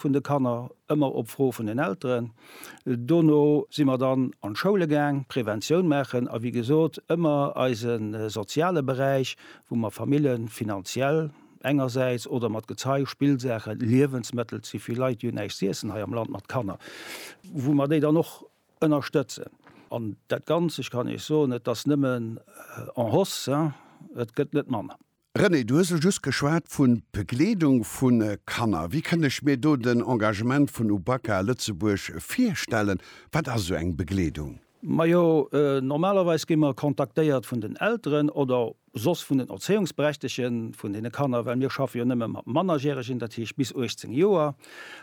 vun de Kanner, ëmmer op Fro vun den Elteren. Dono si mer dann an d'Schoule gaang, Preventioun maachen a wéi gesot ëmmer eise soziale Beräich, wou mer Famille finanziell engersäits oder mat Gezei, Spillsaache, Liewensmëttel, ze vill Leit hunn näischt z'iessen hei am Land mat Kanner, wou mer déi dann och ënnerstëtzen. An dat Ganzt, ech kann Iech soen, et ass nëmmen en hausse, et gëtt net manner. René, du hues elo just geschwat vu Begleedung vu Kanner. Wéi kënnt ech mir do den Engagement vun Ubaka Lëtzebuerg virstellen? Wat ass esou eng Begleedung? Majo, normalerweis gi mer kontaktéiert vun den Elteren oder soss vun den Erzéiungsberechtege vun deene Kanner, well mir schaffe jo nëmme mat Mannerjäregen, dat heescht bis 18 Joer.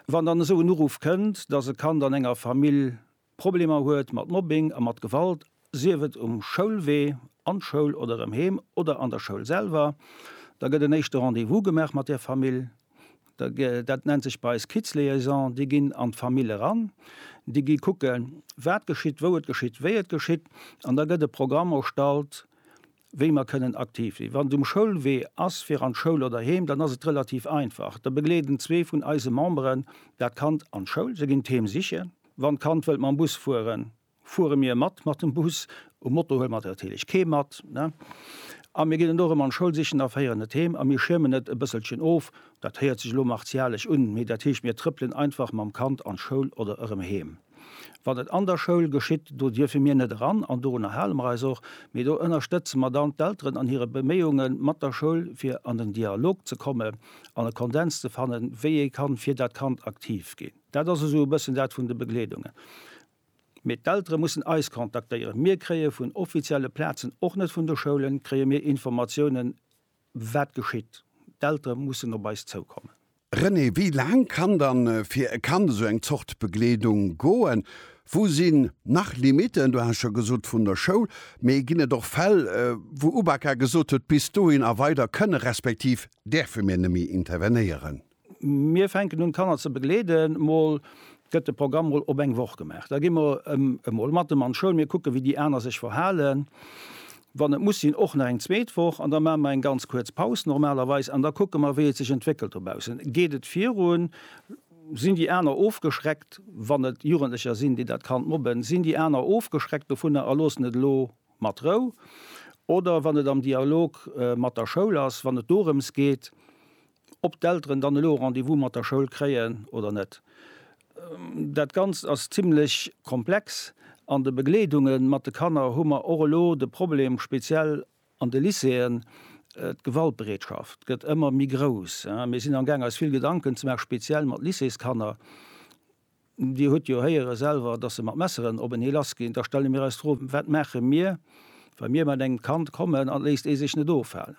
Wann dann esou en Uruff kënnt, dass e Kand an enger Famill Problemer huet mat Mobbing a mat Gewalt, sief et um Schoulwee, an d'Schoul oder erëm heem oder an der Schoul selwer, da gëtt en éischte Rendez-vous gemaach mat där Famill. Dat nennt sech bei eis Kids-Liaison. Déi ginn an d'Famill eran, déi gi kucken, wat geschitt, wou et geschitt, wéi et geschitt. An da gëtt e Programm erstallt, wéi mer kënnen aktiv sinn. Wann et um Schoulwee ass, fir an d'Schoul oder heem, dann ass et relativ einfach. Da begleeden zwee vun eise Memberen dat Kand an d'Schoul, se ginn d'Heem sichen. Wann d'Kand wëllt mam Bus fueren, fuere mir mat mat dem Bus. Um Moto huele mer natierlech kee mat. A mir ginn et och erëm an d'Schoul sichen a féieren et heem. A mir schiermen et e bësselchen of. Dat héiert sech elo martialesch un, mee dat heescht, mir trëppelen einfach mam Kand an d'Schoul oder erëm heem. Wann et an der Schoul geschitt, do dierfe mir net eran an dorunner hale mer eis och, mee do ënnerstëtze mer dann d'Elteren an hire Beméiunge mat der Schoul, fir an den Dialog ze kommen an e Kondens ze fannen, wéi ee kann fir dat Kand aktiv ginn. Dat ass esou e bëssen dat vun de Begleedungen. Mee d'Eltere mussen eis kontaktéieren. Mir kréie vun offizielle Plazen, och net vun de Schoulen, kréie mir Informatiounen. Wat geschitt? D'Eltere mussen op eis zoukommen. René, wéi laang kann dann fir e Kand esou eng Zort Begleedung goen? Wou sinn nach Limiten? Du has scho gesot vun der Schoul, mee ginn et och Fäll, wou UBAKA gesot huet, bis dohin a weider kënne respektiv däerfe mir neméi intervenéieren? Mir fänken un d'Kanner ze begleeden. Mol gëtt de Programm mol op eng Woch gemaach. Da gi mer emol mat em an d'Schoul. Mir kucke wéi déi aner sech verhalen. Wann et muss sinn och nach eng zweet Woch. An da maache mer eng ganz kuerz Paus normalerweis. An da kucke mer wéi et sech entwéckelt dobaussen. Geet et virun? Sinn déi aner ofgeschreckt, wann et Jugendlecher sinn déi dat Kand mobben? Sinn déi aner ofgeschreckt dovunner a loossen et elo mat Rou? Oder wann et am Dialog mat der Schoul ass, wann et dorëms geet, Ob d'Elteren dann elo e Rendez-vous mat der Schoul kréien oder net, dat Ganzt ass zimmlech komplex. An de Begleedunge mat de Kanner hu mer och elo de Problem, speziell an de Lycéeën, d'Gewaltbereetschaft gëtt ëmmer méi grouss. Mir sinn amgaang eis vill Gedanken ze maachen, speziell mat Lycéeskanner, Dir hutt jo héiere selwer, dass se mat Messeren op en ee lassginn. Da stelle mir eis d'Fro, Wat maache mir, wa mir mat engem Kand kommen an et léisst ee sech net ofhalen?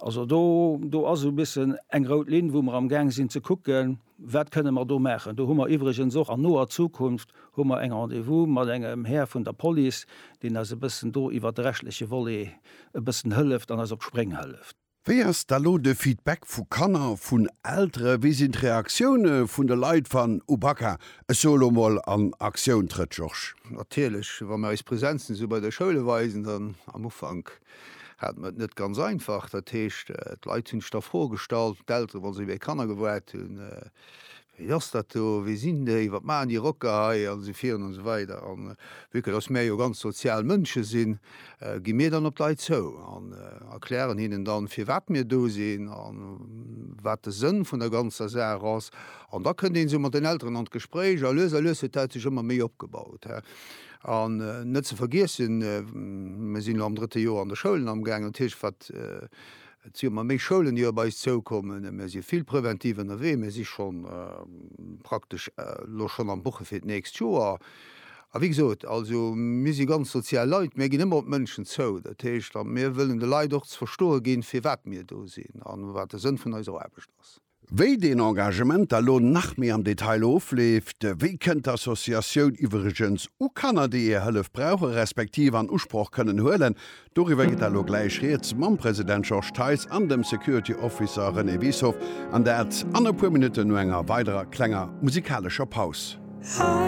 Also do, do ass e bëssen eng rout Linn, wou mer amgaang sinn ze kucken, Wat kënne mer do maachen? Do hu mer iwwregens och an noer Zukunft hu mer eng Rendez-vous mat engem Här vun der Police, deen eis e bëssen do iwwert de rechtliche Volet e bëssen hëlleft an eis op d'Spréng hëlleft. Wéi ass da lo de Feedback vu Kanner, vun Eltere? Wéi sinn d'Reaktioune vun de Leit, wann Ubaka, ech soe lo mol, an Aktioun trëtt, Georges? Natierlech, wa mir eis Präsenzen esou bei de Schoule weisen, dann, am Ufank hate mir et net ganz einfach. Dat heescht, d'Leit hunn sech da Froe gestallt, d'Eltere wa si wéi Kanner gewaart hunn, Wéi ass dat do, wee sinn déi, wat maachen déi Rocker hei an esou virun an esou weider. A vue que dass mär jo ganz sozial Mënsche sinn, gi mir dann op d'Leit zou an erklären hinnen dann, firwat mir do sinn a wat de Sënn vun der ganzer Saach ass. An da kënnt een esou mat den Elteren an d'Gespréich a lues a lues huet dat sech ëmmer méi opgebaut. An net ze vergiessen, mär sinn elo am drëtte Joer an de Schoulen amgaangen, dat heescht wat Et si ëmmer méi Schoulen, déi op eis zoukommen. Mir si vill preventiv ënnerwee. Mir si schonn praktesch elo schonn am Buche fir d'nächst Joer. A wéi gesot, also mir si ganz sozial Leit. Mir ginn ëmmer op d'Mënschen zou. Dat heescht, mir wëllen de Leit och ze verstoe ginn, firwat mir do sinn a wat de Sënn vun eiser Aarbecht ass. Wéi deen Engagement da lo nach méi am Detail ofleeft, wéi kënnt d'Associatioun iwwregens u Kanner, déi hir Hëllef brauchen, respektiv an Usproch kënnen huelen, doriwwer gitt da lo gläich Rieds mam President Georges Theis an dem Security Officer René Wiessow, an dat an e puer Minutten no enger weiderer klenger musikalescher Paus.